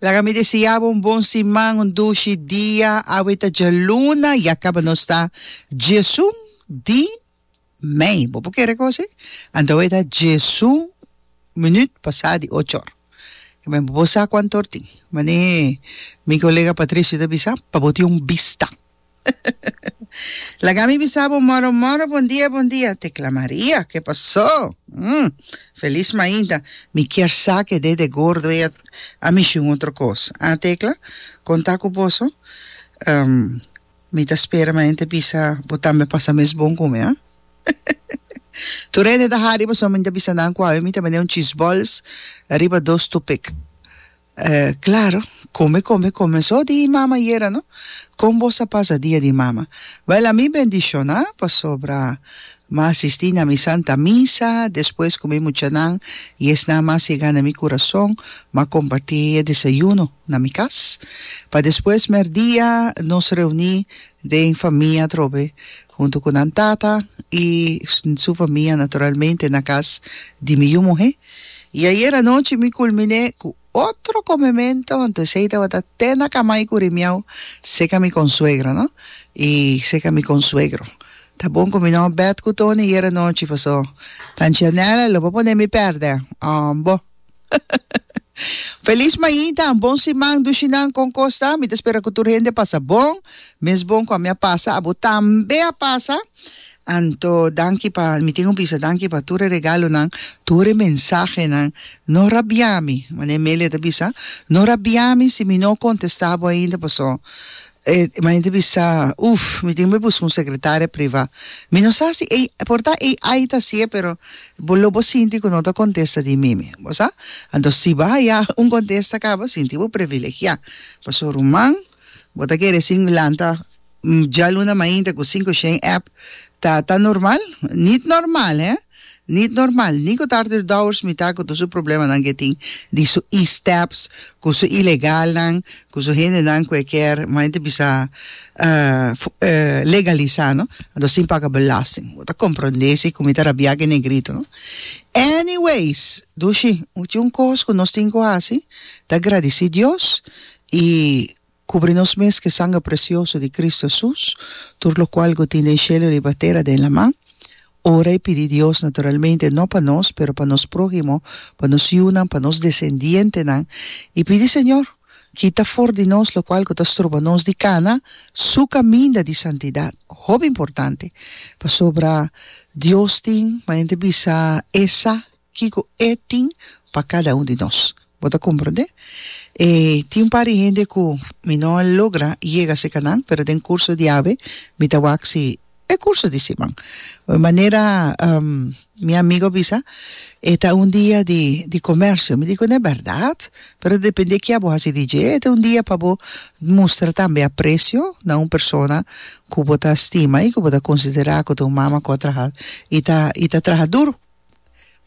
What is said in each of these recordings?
Laga mi deseá bo un bon siman, un dushi dia. Awe ta djaluna, ya kaba nos ta djesun di mei. Bo por kere kosi? Anto awe ta djesun minuut pasá di ocho or. Bo por sa kuantu or tin. Manera mi kolega Patricio ta bisa, pa bo tin un bista. Laga mi bisa bo moro moro bon dia bon dia te kla Maria ke pasó mm felis mainta mi kier sa ke dede gordo ei a mishi un otro kos a Tecla kon ta ku boso em mi ta spera mainta bisa bo tambe pasa mes bon ku mi a tur hende ta hari paso mi ta bisa nan ku awe mi ta bende un cheese balls riba dos tupik. Claro, come come come so di mama yera no? Con boss a pasa dia di mama? Wel a mi bendiciona pasobra ma asisti na mi santa misa despues cu mi muchanan y esnan ma sega na mi curason ma comparti e desayuno na mi cas pa despues merdia nos reuni den famia atrobe huntu ku nan tata i su famia naturalmente na kas di mi yu muhé. I ayer anochi mi kulminé ku otro komemento, huntu esei tabata te na kama i kuri miau seka mi konsuegra, no, i seka mi konsuegro. Ta bon ku mi no bet ku Tony ayer anochi, pasó tanchi anèl lo por poné mi pèrdè, bo. Feliz mañita, un bon siman Dushinan con cos ta? Mi ta spera cu tur hende pasa bon, mes bon cu ami a pasa abo tambe a pasa, anto danki pa mi tin un bisa danki pa tur e regalonan, tur e mensahenan, no rabiami, mane Emelia ta bisa, no rabiami si mi no contesta bo ainda paso E hende bisa, Uf, mi tin bo buska un sekretaria privá. Mi no sa si ei, por ta ei ai ta si'e, pero bo lo bo sinti ku no ta kontesta di mi mi. Bo sa? Anto si bo haya un kontesta aká, bo sinti bo privilegiá. Pasobra ruman, bo ta kere sin lanta djaluna mainta ku sinku shen èp ta ta normal? Nit normal, hè? Nit normal, ni ku Tarter Dowers mitá ku tur su problemanan ke tin di su i steps, ku su ilegalnan, ku su hendenan ku e kier mas henter bisa legalisá, no? Anto sin paga belasting. Bo ta komprondé si ku mi ta rabiá ku e negrito, no? Anyways, dushi, tin un kos ku nos tin ku hasi, ta gradisí Dios i Kubri nos mes ku e sangre presioso di Kristu Hesus, tur lokual ku tin den shelu riba tera den laman, ora i pidi Dios, naturalmente no pa nos, pero pa nos próhimo, pa nos yunan, pa nos desendientenan, i pidi Señor, Kita for di nos lokual ku ta stroba nos di kana Su kaminda di santidat. Hopi importante, pasobra Dios tin, manera nan ta bisa, e sa. Kiko E tin pa kada un di nos. Bo ta komprondé? E tin un par di hende ku mi no a logra yega serka nan, pero den kurso di awe mi ta wak si e kurso di siman. Manera mi amigu a bisa, e ta un dia di di komersio. Mi di ku no e bèrdat, pero dependé ke abo hasi di dje, e ta un dia pa bo mustra tambe apresio na un persona ku bo ta stima i ku bo ta konsiderá ku ta un mama ku a traha i ta i ta traha duru.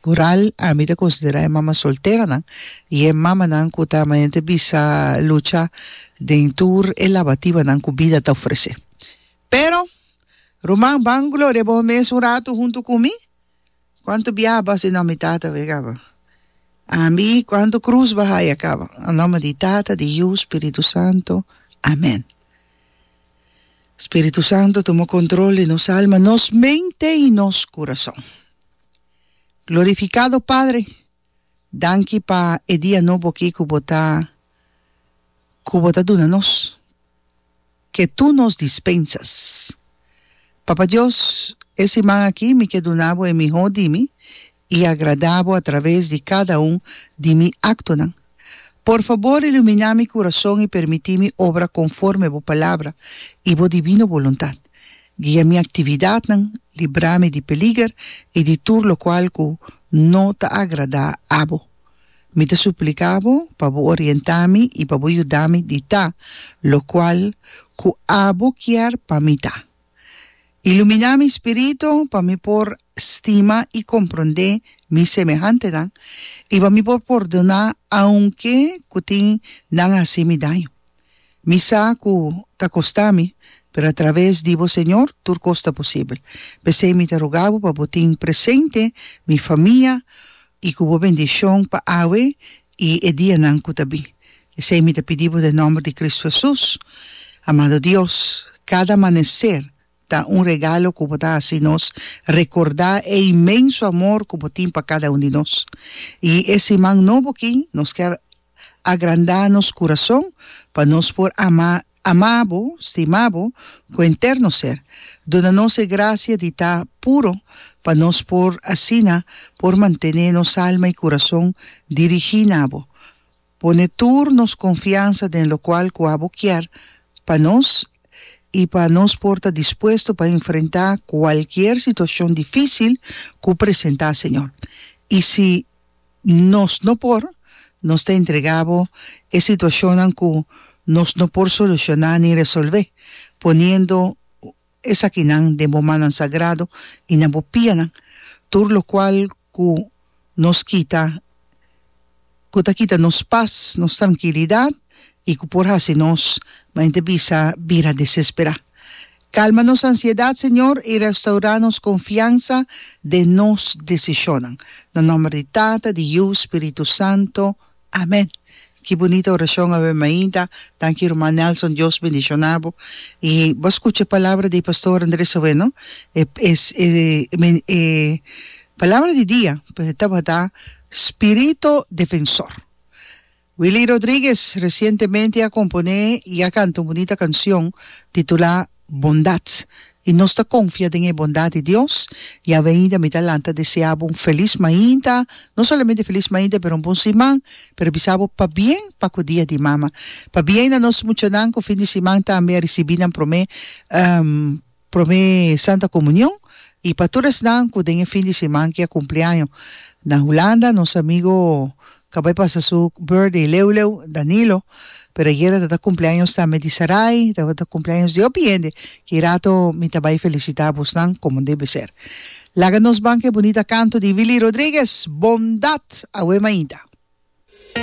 Mural, Ami ta considera e mama solteranan y e mamanan cu ta manente bisa lucha den tur e labatibanan cu bida ta ofrece. Pero, ruman, ban gloria bohon mes un rato hunto cu mi? Cuanto biaha bas di nomi tata wey caba? Ami, cuanto cruz ba haya caba? Anome di Tata, di Yu, Spiritu Santo. Amen. Spiritu Santu tuma control di nos alma, nos mente y nos curason. Glorificado Padre, danki pa e dia nobo aki cu bo ta cu bo ta duna nos, que tu nos dispensas. Papa Dios, e siman aki mi ke duna bo e miho di mi i agrada bo a traves di kada un di mi aktonan. Por fabor iluminá mi kurason i permití mi obra konforme bo palabra i bo divino boluntat. Guia mi aktividatnan, librá mi di peliger i di tur lokual ku no ta agradá abo. Mi ta supliká bo pa bo orientá mi i pa bo yuda mi di ta lokual ku abo kier pa mi ta. Ilumina mi spiritu pa mi por stima i komprondé mi semehantenan i pa mi por pordoná aunke ku tin nan a hasi mi daño. Mi sa ku ta kostá mi, pero atraves di bo Señor tur kos ta posibel. P'esei mi ta ruga bo pa bo tin presente mi famia i ku bo bendishon pa awe i e dianan ku ta bin. Esei mi ta pidi bo den nòmber di Kristu Hesus. Amado Dios, kada amaneser ta un regalo ku bo ta hasi nos rekordá e inmenso amor ku bo tin pa kada un di nos. I e siman nobo aki nos kier agrandá nos kurason pa nos por ama ama bo, stima bo ku henter nos ser. Duna nos e grasia di ta puro pa nos por asina por mantené nos alma i kurason dirigí na bo. Pone tur nos konfiansa den lokual ku abo kier pa nos i pa nos por ta dispuesto pa enfrentá kualkier situashon difísil ku presentá, Señor. I si nos no por, nos ta entregá Bo e situashonnan ku nos no por solushoná ni resolvé, poniendo esakinan den Bo mannan sagrado i na Bo pianan, tur lokual ku nos kita, ku ta kita nos pas, nos trankilidat i ku por hasi nos ma henter bisa bira desesperá. Kalma nos ansiedat, Señor, i restaurá nos konfiansa den nos desishonnan. Na nòmber di Tata, di Yu, Spiritu Santo. Amen ki bunita orashon awe mainta tanki ruman Nelson Dios bendiciona bo y bo a scucha e palabra di pastor Andres awe no e palabra di dia tabata spirito defensor Willy Rodriguez recientemente a compone y a canta un bunita cancion titula bondat, i nos ta konfia den e bondat di Dios. Yahweh ainda mi ta lanta desea bo un felis mainta, no solamente felis mainta pero un bon siman, pero bisa bo pabien pa ku Dia di Mama. Pabien na nos muchanan ku fin di siman tambe a risibí nan promé promé Santa Komunion i pa tur esnan ku den e fin di siman ke a kumpleaño. Na Hulanda nos amigo Caba e pasa su birthday leu leu Danilo pero ayera ta ta cumpleaños tambe di Sarai tabata cumpleaños di hopi hende ki rato mi ta bay felicita busnan como debe ser laga nos ban cu e bunita canto di Willy Rodriguez Bondad awe mainta.